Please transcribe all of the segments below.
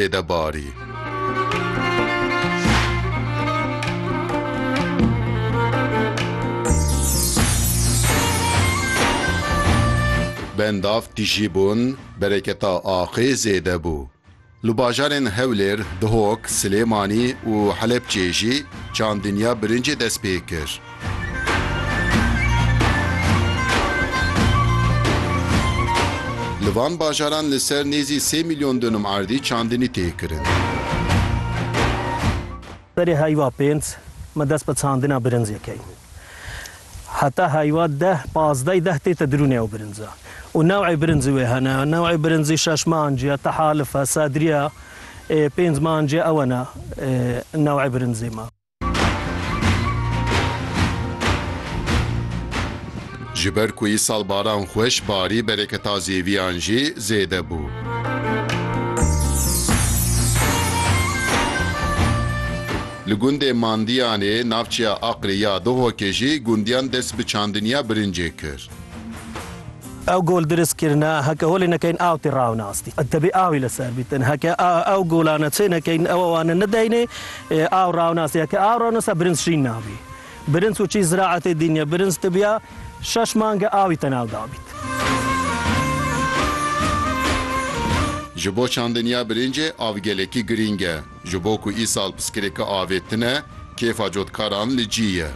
tê de barî. Bendav tîjî bûn bereketa axê zêde bû. Li bajarên Hewlêr, Dihok, Silêmanî û Helepçê jî çandiniya birincê dest pê kir. Li van bajaran li ser nêzî sê milyon dûnum erdî çandinî tê kirin. Serê heyva pênc me dest bi çandina birincê kir. Heta heyva deh, pazdey deh tête dirûnê ew birinca. Û new'ê birincî wê hene. New'ê birincî şeş me anciye, tehalif e, sedriye. Ê pênc me anciye ew e ne new'ê birincê me. Ji ber ku îsal baran xweş barî bereketa zêviyan jî zêde bû. Li gundê Mandiyanê navçeya Aqrê ya Duhokê jî gundiyan dest bi çandiniya birincê kir. Ew gol diris kirine, heke holê nekeyin aw tê rawne astî. Dibê awî li ser bîtin. Heke ew gola neçê nekeyin ew wane nideynê, Aw rawnas ye ke aw rawnas birinc şîn nabî. Birinc û çî ziraetê dîn ye. Birinc tibiya şeş mange awî te nav dabît. Ji bo çandiniya birincê av gelekî girîng e. Ji bo ku îsal piskirêka avê tune, kêfa cotkaran li cî ye.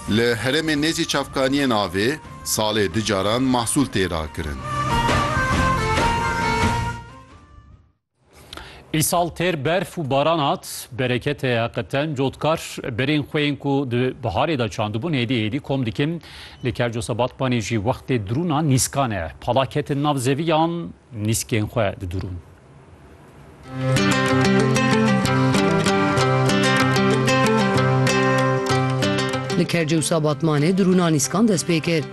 Li heremê nêzî çavkaniyên avê salê du caran mahsûl tê rakirin. Îsal têr berf û baran hat, bereketê heqeten cotkar berên xwe yên ku di biharê de çandibûn hêdî hêdî kom dikin. Li Kercosa Batmanê jî wextê dirûna nîskan e. Pala ketin nav zeviyan, nîskên xwe didurûn. Li Kercosa Batmanê dirûna nîskan dest pê kir.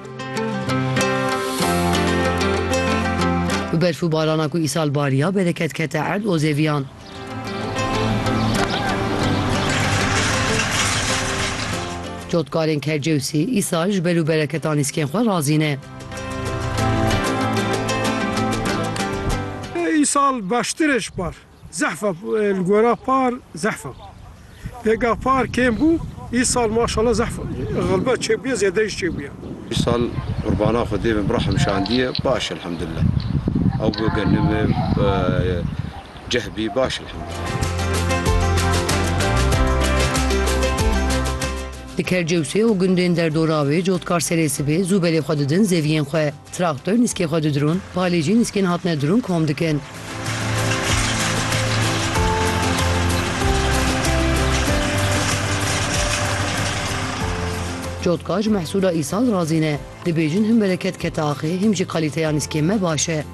Bi berf û barana ku îsal bariya bereket kete erd û zêviyan. Cotkarên Kercewsî îsal ji ber û bereketan nîskên xwe razî ne. Îsal baştir e ji par. Zehfa li gora par zehfa lê geh par kêm bû îsal maşallah zehfa xelbet çêbûye zêde jî çêbûye. Îsal qurbana xwedê bin birahim şandiye baş elhamdulillah ew bi genim e ceh bî baş elhamdulillah. Di Kercewsê û gundên derdora wê cotkar serê sibê zû belê xwe didin zeviyên xwe. Traktor nîskê xwe didirûn, palê jî nîskên hatine dirûn kom dikin. Cotka ji mehsûla îsal razî ne. Dibêjin him bereket kete axê him jî kalîteya nîskên me baş e.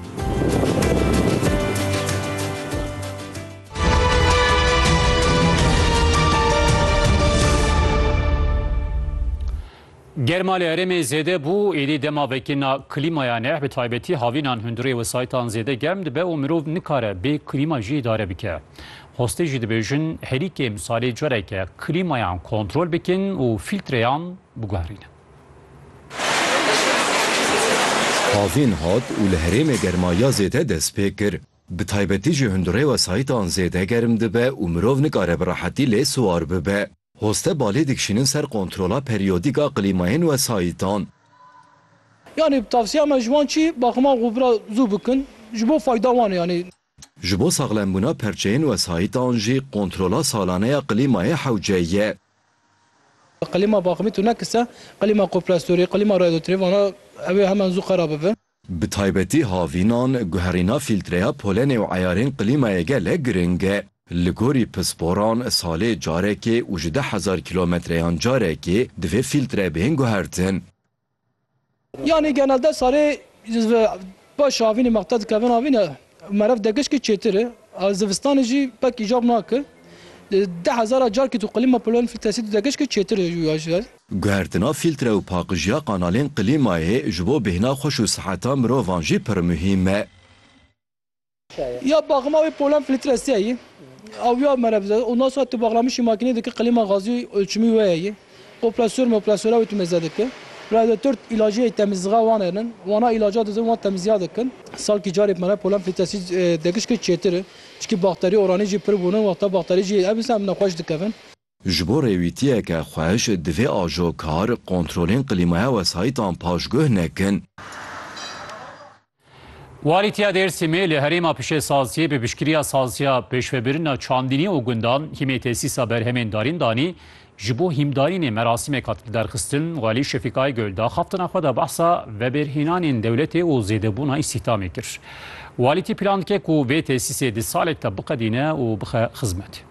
Germa li herêmê zêde bû, êdî dema vekirina klîmaya neh bi taybetî havînan hundirê wesayîtan zêde germ dibe û mirov nikare bê klîma jî îdare bike. Xwestê jî dibêjin herî kêm salê careke klîmayan kontrol bikin û fîltreyan biguherînin. Havîn hat û li herêmê germa ya zêde dest pê kir. Bi taybetî jî hundirê wesayîtan zêde germ dibe û mirov nikare bi rehetî lê siwar bibe. Hoste balê dikişînin ser kontrola perîyodîk a klîmayên wesayîtan. Yanî tavsiya me ji wan çi? Baximan xwebira zû bikin ji bo fayda wan e yanî. Ji bo saxlembûna perçeyên wesayîtan jî kontrola salane ya klîmayê hewce ye. Klîma baximî tune kise, klîma koprestorî, klîma radyotrê vana ew ê hemen zû xera bibe. Bi taybetî havînan, guherîna fîltreya polenê û eyarên klîmayê gelek giring e. Li gorî pisporan, salê carekê û ji deh hezar kîlometreyan carekê divê fîltre bên guhertin. Yanî genelde salê paşê havînê mexte dikevin havîn e û meriv degişkî çêtir e. Zivistanê jî pek îcab nake. Deh hezara carekê tu klîma polen fîltresî tu degişkî çêtir e ji wî ve. Guhertina fîltre û paqijiya qanalên klîmayê ji bo bêhna xwe û siheta mirovan jî pir muhîm e. Ya baxma wê polen fîltre se yî, awiya mere bize û nas tu baxlamişî makînê dike klîma gazî ulçimî wê yî. Opresor me opresola wê tu mêze dike. Radyotor îlacê temizîga wan enin. Wana îlaca dizin wan temizîga dikin. Salkî carê mere polen fîltresî degişke çêtir in. Çikî bakterî oranî jî pir bûnin. Wexta bakterî jî ev insan nexweş dikevin. Ji bo rêwîtiyeke xweş divê ajokar kontrolên qlîmaya wesayîtan paşguh nekin. Walîtiya Dêrsimê li herêma pişesaziyê bi piştgiriya Saziya Pêşvebirina Çandînî û Gundan hîmê tesîsa berhemên darîn danî. Ji bo hîmdarînê merasîmek hat lidarxistin, Walî Şefîk Aygul di axaftina xwe de behsa vebêrhênanên dewletê û zêdebûna îstîhdamê kir. Walîtî plan dike ku vê tesîsê di salek de biqedîne û bixe xizmetê.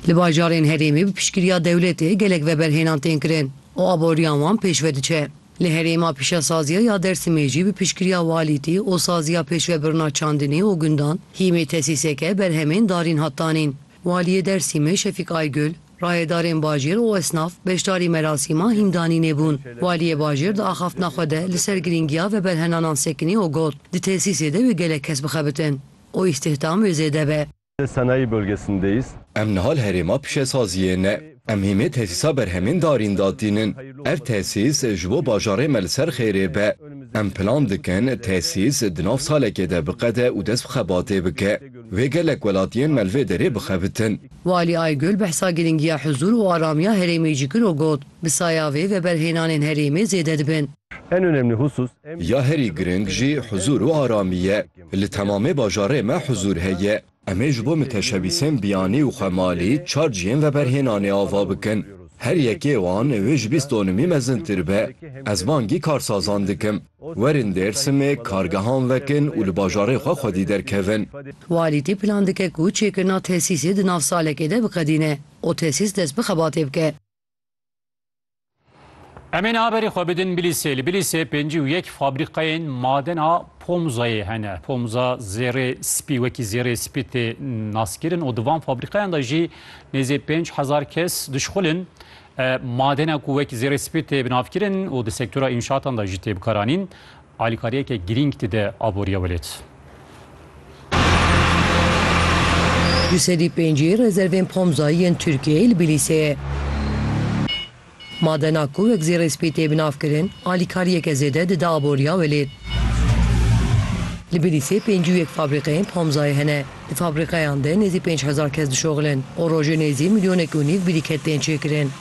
Li bajarên herêmê bi piştgiriya dewletê gelek veberhênan tên kirin û aboriya wan pêşve diçe. Li herêma pîşesaziya ya Dêrsimê jî bi piştgiriya walîtî û saziya pêşvebirina çandinê û gundan hîmê tesîseke berhemên darîn hat danîn. Waliyê Dêrsimê Şefîk Aygul, rayedarên bajêr û esnaf beşdarî merasîma hîndanînê bûn. Waliyê bajêr di axaftina xwe de li ser girîngiya veberhenanan sekinî û got, Di tesîsê de wê gelek kes bixebitin û îstihdam wê zêde be. Sanayi bölgesindeyiz. Em niha li herêma pişesaziyê ne. Em hîmê tesîsa berhemên darîn da tînin. Ev tesîs ji bo bajarê me li ser xêrê be. Em plan dikin tesîs di nav salekê de biqede û dest bi xebatê bike. Wê gelek welatiyên me li vê derê bixebitin. Walî Aygul behsa giringiya huzûr û aramiya herêmê jî kir û got, Bi saya vê veberhênanên herêmê zêde dibin. Ya herî giring jî huzûr û aramî ye. Li temamê bajarê me huzûr heye. Em ê ji bo miteşebîsên biyanî û xwemalî çar cihên veberhênanê ava bikin. Her yekê wan wê ji bîst donimî mezintir be. Ez bangî karsazan dikim, werin Dêrsimê kargehan vekin û li bajarê xwe xwedî derkevin. Walîtî plan dike ku çêkirina tesîsê di nav salekê de biqedîne û tesîs dest bi xebatê bike. Em ê haberê xwe bidin Bilîsê. Li Bilîsê pêncî û yek fabrîkayên madena pomzayê hene. Pomza zêrê spî wekî zêrê spî tê naskirin û di van fabrîkayan de jî nêzê pênc hezar kes dişxulin. Madena ku wekî zêrê spî tê binavkirin û di sektora înşatan de jî tê bikaranîn. Alîkariyeke girîng dide aboriya welêt. Du sedî pêncî rezervên Pomza yên Tirkiyeyê li Bilîsê. Madena ku wek zêrê spî tê binavkirin, alîkariyeke zêde dide aboriya welêt. Li Bilîsê pêncî û yek fabrîkeyên Pomzayê hene. Di fabrîkeyan de nêzî pênc hezar kes dişoxilin û rojê nêzî milyonek û nîv birîket tên çêkirin.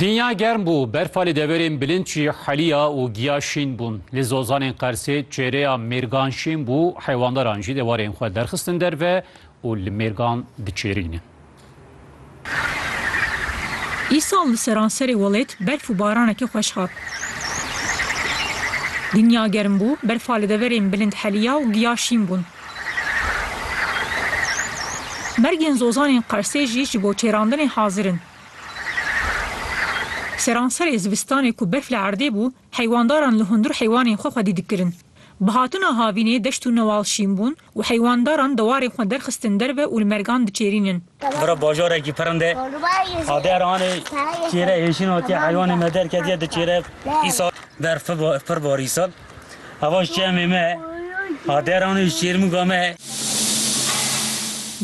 Dinya germ bû, berfa li deverên bilind jî heliya û giya şîn bûn. Li zozanên Qersê çêreya mêrgan şîn bû, heywandaran jî dewarên xwe derxistin derve û li mêrgan diçêrînin. Îsal li seranserê welêt berf û baranekî xweş hat. Dinya germ bû, berfa li deverên bilind heliya û giya şîn bûn. Mergên zozanên Qersê jî ji bo çêrandinê hazir in. Seranserê zivistanê ku berf li erdê bû, heywandaran li hundir heywanên xwe xwedî dikirin. Bi hatina havînê deşt û newal şîn bûn Û heywandaran di warê xwe derxistin derve û li mergan diçêrînin. Bira bajarekî pirind e. Ader anê çêre hêşîn hatiye heywanê me derketiye di çêre. Îsal berf pir bar îsal. Eva ji çemê me ye. Ader anê ji çêrmûga me ye.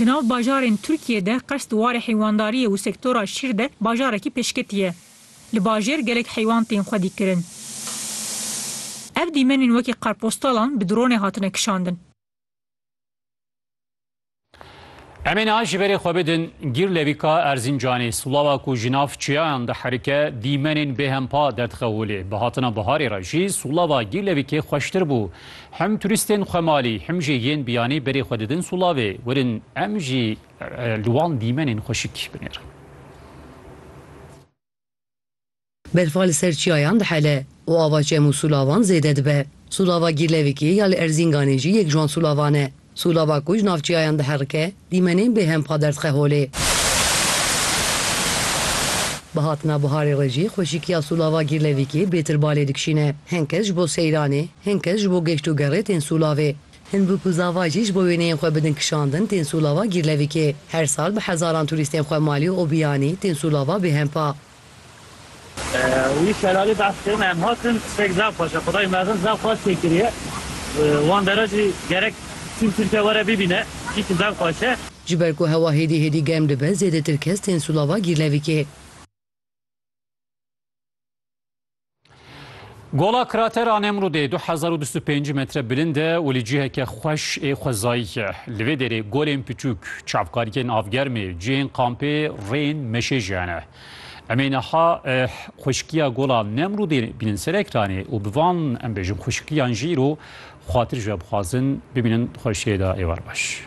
Di nav bajarên Tirkiyê de qers di warê heywandariyê û sektora şîr de bajarekî pêşketî ye. Li bajêr gelek heywan tên xwe dîkirin. Ev dîmenên wekî qarpostalan bi dronê hatine kişandin. Em ê niha ji berê xwe bidin Gîrlevîka Erzîncanê, silawa ku ji nav çiyayan diherike, dîmenên bêhempa derdixewilê. Bi hatina biharê re jî silawa Gîrlevîkê xweştir bû. Him turîstên xwemalî him jî yên biyanî berê xwe didin silavê. Werin em jî Li wan dîmenên xwe şikî binêr. Berfa li ser çiyayan dihele û ava çem û sûlavan zêde dibe. Sûlava Gîrlevikê ya li Erzînganê jî yek ji wan sûlavan e. Sûlava ku ji nav çiyayan diherike, dîmenên bêhem pa derdixê holê. Bi hatina biharê re jî xweşikiya sûlava Gîrlevikê bêtir balê dikişîne. Hin kes ji bo seyranê, hin kes ji bo geşt û gerê tên sûlavê. Hin bûk û zava jî ji bo wêneyên xwe bidin kişandin tên Sûlava Gîrlevikê. Her sal bi hezaran turîstên xwe malê û biyanî tên Sûlava Bêhempa. Wî şelalê behs kirin em hatin tiştek zaf xweş e. Xwedayê mezin zaf xweş tê kiriye. Wan dere jî gerek tîm Tirkiye were bibîne. Hîsê zaf xweş e. Ji ber ku hewa hêdî hêdî germ dibe zêdetir kes tên Sûlava Gîrlevikê. Gola kratera Nemrûdê du hezar û bîst û pêncî metre bilind e û li ciheke xweş ê xwezayî ye. Li vê derê golên piçûk, çavkargên avgermê, cihên kampê, rêyên meşê jî hene. Em ê niha xweşikiya gola Nemrûdê bînin ser ekranê û bi van em bêjin xweşikiyan jî îro xwatir ji we bixwazin. Bimînin xweşiyê da êwar baş.